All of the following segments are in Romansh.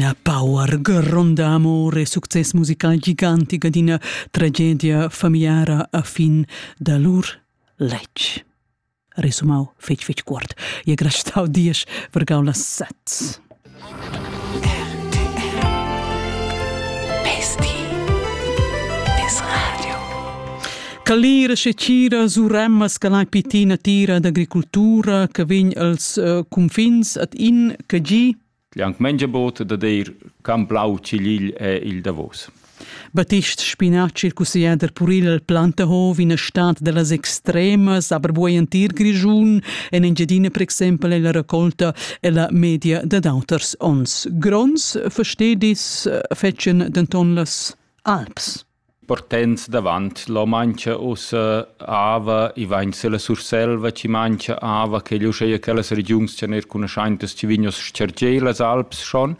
ina power gronda amor e success musical gigantic ad ina tragedia familiara a fin da lur letg. Resumau fetg fetg cuort. E grastau dies vergau las sets. Calira se cira suremma scalai pitina tira d'agricoltura che vegn als uh, confins at in che gi Liang Mengiabot da dir can blau cigl è il davos. Batist Spinacci, il cusseglier puril al Plantehov, in stat dellas extremas, aber buei entir Grischun, en Engiadina, per exempel, è la raccolta e la media da d'auters ons. Grons, verstedis, fetschen denton las Alps. Partenz davant l'ho manchia ussa ava, i vain sülla Surselva chi manchia ava, ch'el uscheja quellas regiuns cha neir cunuschaintas chi vignan a s-chargier las Alps schon.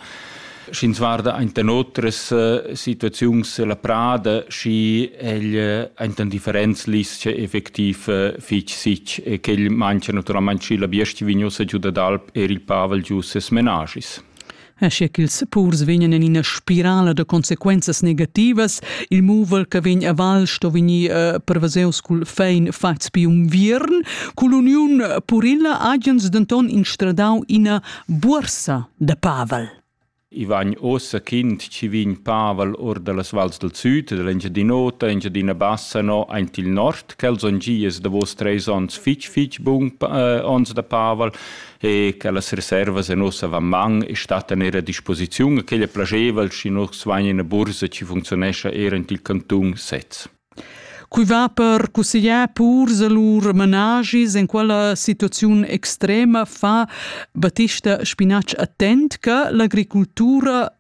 Sch'ins guarda aint da otras situaziuns la prada, schi el aint in differents lis-cha effectiv fich sich e quel manchia natüralmaing schi la biestga chi vign ussa giù dad Alp, eir il pavel giù ses menaschis. Aschia ch'ils purs vegnan en ina spirala da consequenzas negativas, il muvel che vegn a val sto vegnir uh, prevaseus cul fein fatgs bi unviern. Cull'uniun purilla hagens denton instradau ina buorsa da pavel. I vegn ossa kind ci vegn Pavel or dallas vals del Süd, dell'Engiadinota, Engiadina Bassa, no aint il nord, quels on gies davos treis ons fitch fitch bung eh, ons da Pavel, e che las reservas en nossa van man e stattan er a disposiziun a quella plageval schi nus vain in bursa ci funzionescha er in il cantun sez. Cui va per cusseglier pur lur managis in quella situaziun extrema fa Battista Spinacci attent che l'agricoltura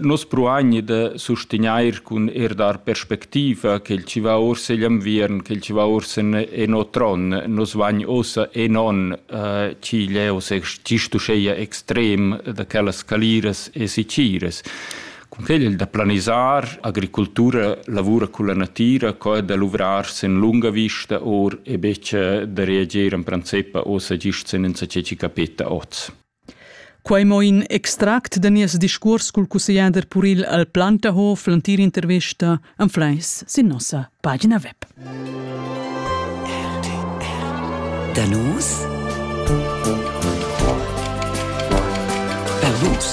Nus pruagni da sustegnair cun eir dar perspectiva ch'el chi va uossa igl inviern, ch'el chi va uossa en o tron. Nus vagn uossa enon ch'igl è uossa gist uscheia extrem da quellas caliras e siciras. Cun quel il da planisar, agricultura lavura culla natira, co da luvrar sen lunga vista or e betg da reager in princip uossa gist senza che ci capeta oz. Quei mo in extract da nies discuors cul cussegliader puril al Plantahof l'entira intervesta anfleis sin nossa pagina web. Da nus? Per vus.